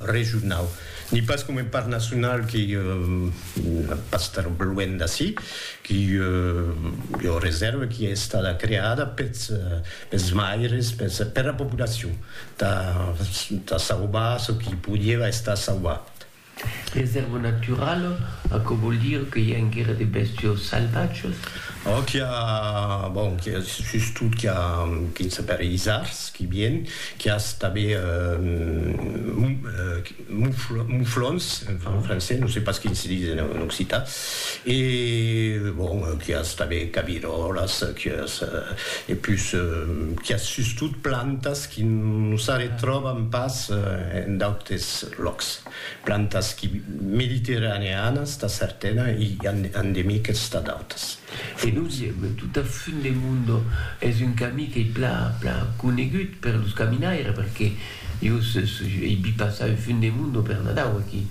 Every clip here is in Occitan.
regionau, ni pas coma un parc nacional qui pas estar luènh d'ací, qui ua reserva qui es estada creada peths peths maires, peths pera populacion, tà tà sauvar çò qui podieva estar sauvat. Reserva naturala, aquò vòl dire que i a enguera de bèstios salvatges? Òc, i a, bon, sustot qu'i a, quin se pèri isards, Qui bien, qui as tabé mouflons, en francés, no sé pas quin se dis en occitan, e bon, qui as tabé cabirolas, qui as, e pus, qui as sustot plantas qui no s'arretròban pas en d'autes lòcs, plantas qui mediterraneanas tà certena e endemiques tà d'autas. E lo diem, tot a fun de mundo es un camí qu'ei pla pla conegut per los caminaires perque jo ei vist passar un fun de mundo per Nadau aquí.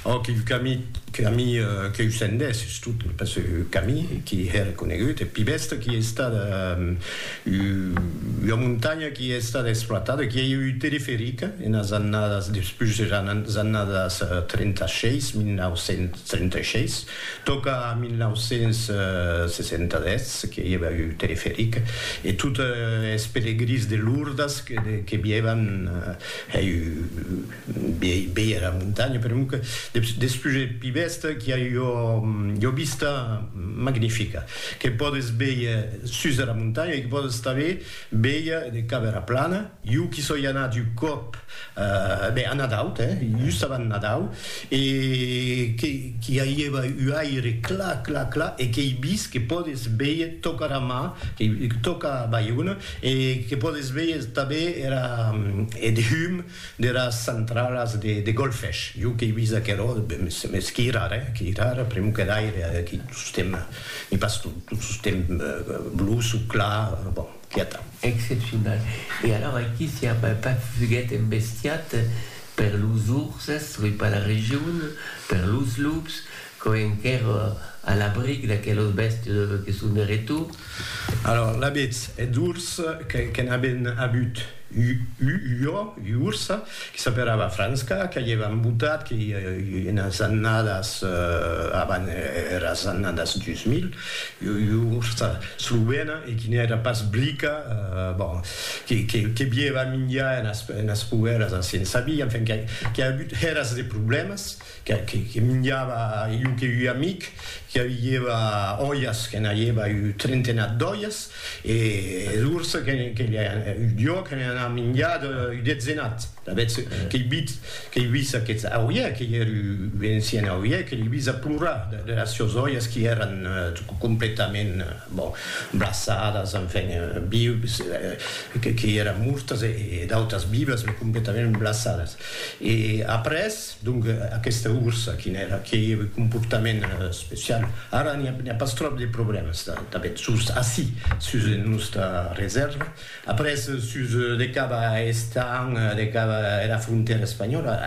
Òc, un camí camí qu'ei sendèr sustot pas un camí qui hèr conegut e pi bèsta qui ei estada ua montanha qui ei estada exploitada qui ei eu un teleferic enas annadas despús deras annadas 36 1936 Tòca 1960 que i èva un teleferic e totes es pelegrins de Lourdes que vièvan hèi viei era montanha, per emor que despús eth Pi Vest qu'i a ua vista magnifica que pòdes vier sus era montanha e que pòdes tanben vier de cap era plana. Jo qu'i soi anat un còp Be, a Nadau, te, just avant Nadau, e que qu'i aïeva u aire cla, cla, cla, e qu'ei vist que pòdes véier tòca era mar, que tòca Baiona, e que pòdes véier tanben era, eth hum deras centralas de Golfech. Jo qu'ei vist aquerò, mès qu'ei rar, eh, qu'ei rar, pr'amor que d'aire, qu'ei tostemp, n'ei pas tostemp blus o clar, bon. Quieta. Excepcional. E alors aquí si Armand Pach fuguèt embestiat per los urses, oi pas la region, per los lups, quò enquèr a l'abric d'aquelos bèstes que son de retour. Alors l'avètz eths urs que n'aven avut ua ursa? que s'aperava Frantzka, qu'avieva embotat que enas annadas avant eras annadas 2000, ursa slovena e qui n'èra pas blica, bon, que bieva minjar enas poeras a Sensabí, enfin, qu'a agut eras de problèmas. que minjava iu que ui amic que aviieva oias que n'aieva iu trentenat d'oias e es urs que iu diò que n'an a minjat iu detzenat d'avetz que ei vit que ei vis aqueth auier que ei er iu encien auier que l'ei vis a plorar de las sios oias qui eran completament bon blassadas enfin vius que ei eran mortas e d'autas vivas me completament blassadas e après Donc aquesta ursa quin èra? Qué ei eth comportament especiau? Ara n'i a pas tròp de problèmas tanben sus ací, sus era nòsta resèrva. Après sus de cap a Estaing, de cap a era frontèra espanhòla,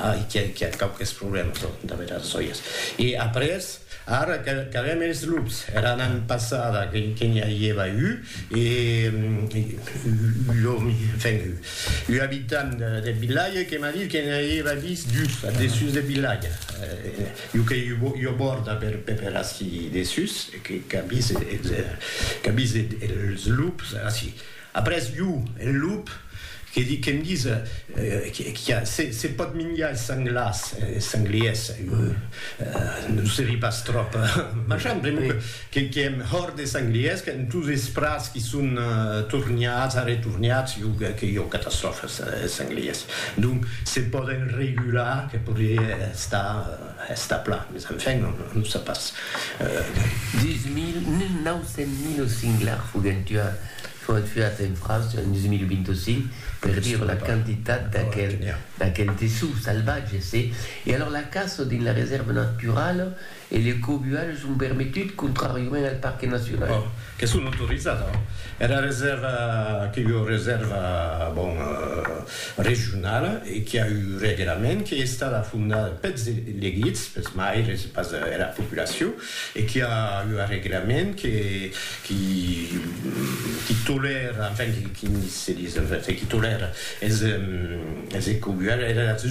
ai qu'i a quauques problèmas damb era sòias. E après, ara qu'avèm es lups, era annada passada que n'i a ieva un, E ua abitant deth vilatge que m'a dit que ne auieva vist dus ath dessús deth vilatge, ua qu'ei ua bòrda per ací dessús, qu'a vist es lups ací. Après, ua, eth lup. Que di que'm dis qu'a se pòt minjar es sanglars, es sangliers, non serie pas tròp machant, pr'amor que que èm hòrt des sangliers, qu'èm tous es prats qui son torniats, arretorniats, jo que que jo catastròfa es es sangliers. Donc se pòden regular que podrie estar estar plan, mes enfin non non se pas. Deu mil, neu nau cent mil os singlars foguèn tuats. Foguèt fiat en França en 2025 per dire la quantitat d'aquel dessous salvatge se e alors la caça dins la resèrva naturala e le cobuatge son permetut contràriament al parque nacional. Que son autorizada. Era resèrva que ua resèrva bon regionala e qui a un reglament qui estada fondada pels elegits, pels maires e pas era populacion e qu'i a ua reglament que qui qui tolèra enfin qui qui se dis enfin qui tolèra es es ecobuadas